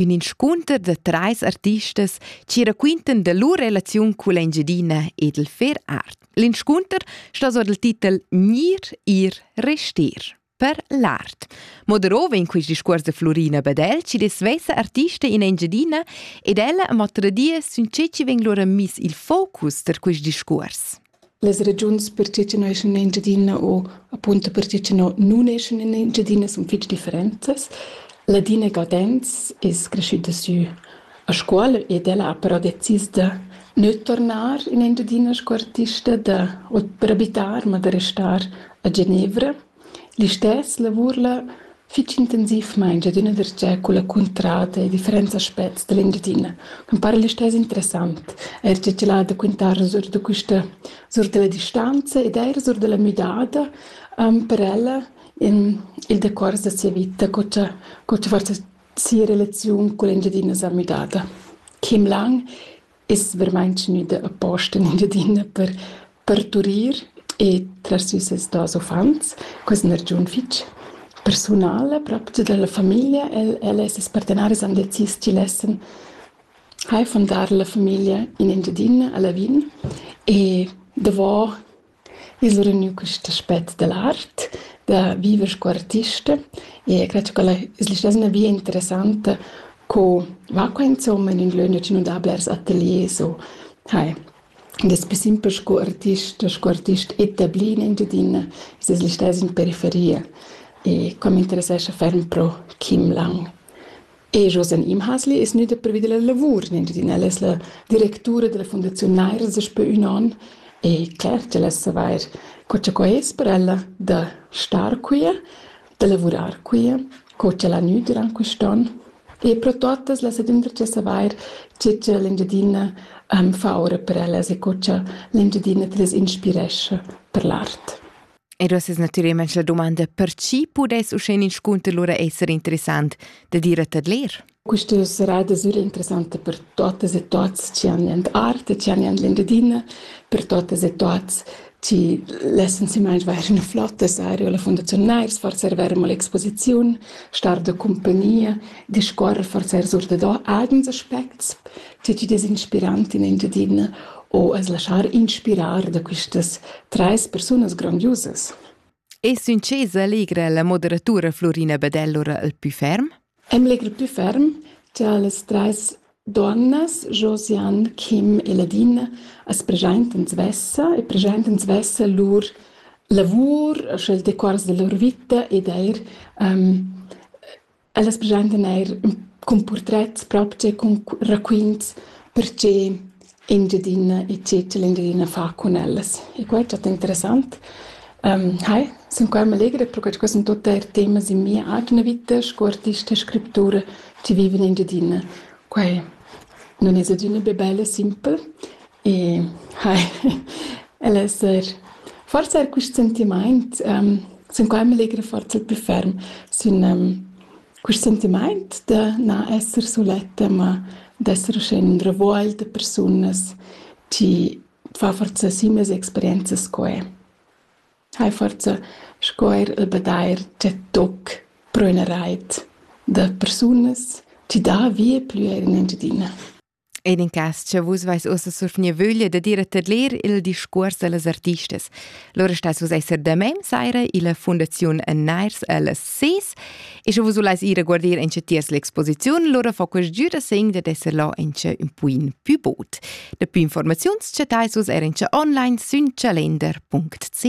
ün inscunter da trais artistas chi raquintan da lur relaziun culla Engiadina ed il fer art. L'inscunter sta sur dal titel Gnir, ir, restir per l'art. Mo darova in quist discuors da Florina Badel chi des svesa artista in Engiadina ed ella ma tradia sün che chi vegn lura miss il focus tar quist discuors. Las regiuns per tge che no eschan in Engiadina u apunto per tge che no nun eschan in Engiadina sun fich differentas. Ladina Gaudenz es creschüda sü a Scuol ed ella ha però decis da gnü turnar in Engiadina sco artista, da o per abitar, ma da restar a Genevra. Listess lavur'la fich intensivmaing ed üna darcheu culla cuntrada e differents aspets da l'Engiadina ch'ün para listess interessant, eir cha tg'el ha da quintar sur da quista sur da la distanza ed eir sur da la müdada per ella in il decuors da sia vita co cha co cha forsa sia relaziun cull'Engiadina s'ha müdada. Kim Lang es vermaint gnüda aposta in Engiadina per parturir e trer sü ses duos uffants. Quist n'es giun fich persunala propcha giü da la famiglia. El el e ses partenaris han decis chi lessan eir fundar la famiglia in Engiadina a Lavin e davo I's regnü quist aspet da l'art, da viver scu artista e cret cha quella es listessina via interessanta co va qua insomma in ün lö ünna chi nu dà blers ateliers o hai. Ed es pü simpel scu artist, scu artist etablì in Engiadina es es listess in periferia e qua m'interessescha ferm pro Kim Lang. E Josen Imhasli es gnüda previda la lavur in Engiadina. El es la directura della Fundaziun Nairs daspö ün on e cler ch'el es savair co cha quai es per ella da star quia, da lavurar quia, co ch'el ha gnü durant quist'on e pro tuottas las adündra cha savair che cha l'Engiadina am fa ora per ellas e co cha l'Engiadina til es inspirescha per l'art. Ed uss es natüralmaing la dumanda per chi pudess uschè ün inscunter lura esser interessant da dir a tet ler? Questa serada sera interessanta per totes e tots chi han in arte, chi han in Engiadina, per totes e tots chi lessan semai vair üna flotta seria la Fundaziun Nairs, forser ver mo l'exposiziun, star de compagnia, discorrer forser sur da do agens aspects, Ti ti des inspirant in Engiadina o as laschar inspirar da quistas trais persunas grandiusas? E succesa allegra la moderatura Florina Badell ora al pü ferm? Em legr pü ferm cha las trais donnas, Josiane, Kim e Ladina, as preschaintan svessa e preschaintan svessa lur lavur, sche il decuors da lur vita ed eir um, ellas preschentan eir ün cun purtrets propcha e cun raquints perche Engiadina e Cecil Engiadina fa cun ellas e quai è statt interessant. Hai, sun qua meglera perche que sun tuot eir temas in mia atgna vita sco artista e scriptura chi viva in Engiadina. Quai nun es adüna be bel e simpel, Hai, el es eir forsa eir quist sentimaint, sun qua meglra forsa il plü ferm sün quist sentimaint da na esser suletta, ma d'esser uschè in ün revuogl da persunas chi fa forsa simas experienzas sco e. Hai forsa sco eir il badair dschet toc pro üna rait da persunas chi dà vie plü eir in Engiadina. En in cas, che vus vais ussa surfnir vöglia da dir a tadler il discuors dallas artistas. Lura stas vus esser damain saira illa Fundaziun Nairs alles Sees e sche vus vulais ir a guardir in tiers l'exposiziun, lura fa quest giu da segn dad esser là in un puin più bod. Da più informaziuns chattais vus er in online sün calender.ch.